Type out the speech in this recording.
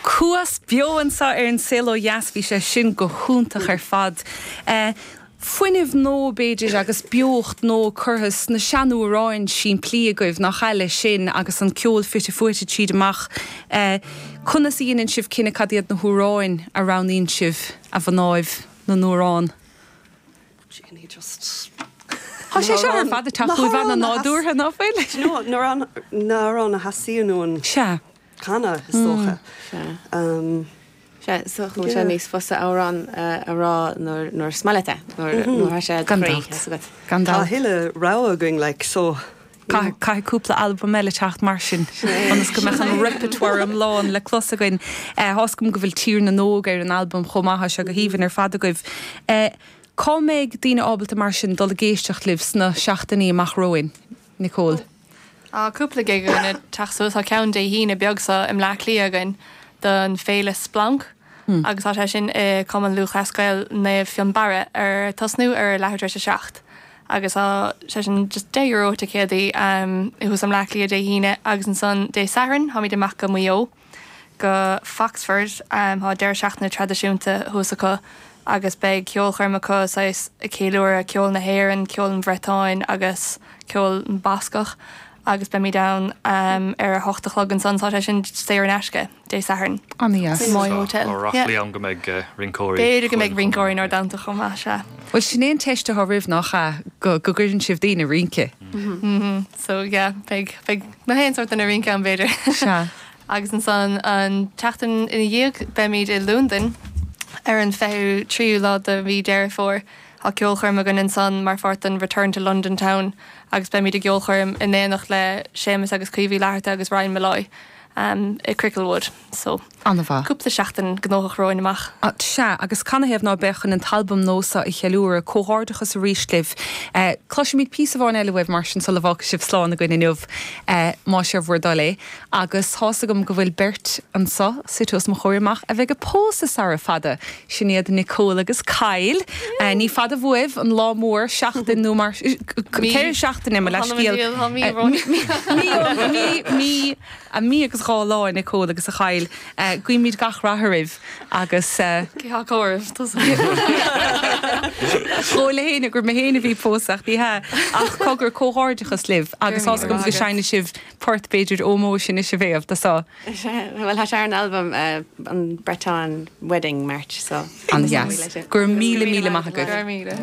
Cuas beo anseo ar An Saol Ó Dheas, bhí sé sin go hiontach ar fad. Fuinneamh nua, b'fhéidir, agus beocht nua curtha sna seanamhráin simplí agaibh, ní háil leis sin agus an ceol fite fuaite tríd ambaist. Conas a dheineann sibh cinneadh cad iad na hamhráin a roghnaíonn sibh, a mhnáibh na n-amhrán? Tá sé seo ar fad ag teacht faoi bhun an nádúrtha, nach bhfuil? Na hamhráin a theastaíonn uainn canadh, is dócha. Sea, tá sé níos fusa amhrán a rá nuair is maith leat é, nuair a bhí sé gan dabht. Tá a thuilleadh rogha againn, like, so. Caithfidh cúpla albam eile teacht mar sin ionas go mbeadh an repertoire iomlán le clos againn. Tá's agam go bhfuil Tír na nÓg ar an albam chomh maith, tá sé go haoibhinn ar fad agaibh. Cá mbeidh daoine ábalta mar sin dul ag éisteacht libh sna seachtainí amach romhainn? Nicole. Tá cúpla gig againn ag teacht suas, tá ceann Dé hAoine beag seo i mBleá Cliath againn don féile Splanc agus á sé sin i Cumann Lúthchleas Gael Naomh Fionnbarra, ar tosnú ar a leathuair tar éis a seacht. agus tá sé sin just deich euro ticéadaí thuas i mBleá Cliath Dé hAoine agus ansan Dé Sathairn táimid amach go Maigh Eo go Foxford tá deireadh seachtaine traidisiúnta thuas acu agus beidh ceolchoirm acu saghas ag ceiliúradh ceol na hÉireann, ceol an Bhretáin agus ceol na mBascach agus beimid ann ar a hocht a chlog ansan tá sé sin saor in aisce. Dé Sathairn. In the Moy Hotel. Dúradh liom go mbeidh rinceoirí. B'fhéidir go mbeidh rinceoirí inár dteannta chomh maith, sea. Bhuel sin é an teist atá romhaibh nach ea, go gcuireann sibh daoine ag rince. Mhm. So yeah, beidh, beidh an aon sórt duine ag rince ann b'fhéidir. Sea. Agus ansan an tseachtain ina dhiaidh beimid i Londain ar an 23ú lá de mhí Deireadh Fómhair. Tá ceolchoirm againn ansan mar pháirt den Return to London Town agus beimid i gceolchoirm in éineacht le Séamus agus Caoimhe Uí Fhlatharta agus Ryan Molloy. i Cricklewood. So. An-mhaith. cúpla seachtain gnóthach romhainn amach. Sea, agus canathaobh ná beadh chun an t-albam nua seo a cheiliúradh? Comhghairdeachas arís libh. Cloisfimid píosa amháin eile uaibh mar sin sula bhfágfaidh sibh slán againn inniu, más é bhur dtoil é. Agus tá's agam go bhfuil beirt anseo, suite os mo chomhair amach, a bheidh ag pósadh sara fada! Sin iad Nicole agus Kyle. Ní fada uaibh an lá mór, seachtain nó mar sin, ceithre seachtaine, mo leithscéal. Mí mí agus dhá lá a Nicole agus a Kyle. Guímid gach rath oraibh agus. Cé acu oraibh tusa? Chuala mé fhéin gur mé fhéin a bhí ag pósadh ní hea ach cogar comhghairdeachas libh agus tá 's agam go seineann sibh port b'fhéidir ómóis anois a Mhéabh do. Bhuel, tá sé ar an albam, an Breton Wedding March, so. An-dheas. Go raibh míle, míle maith agaibh. Go raibh míle.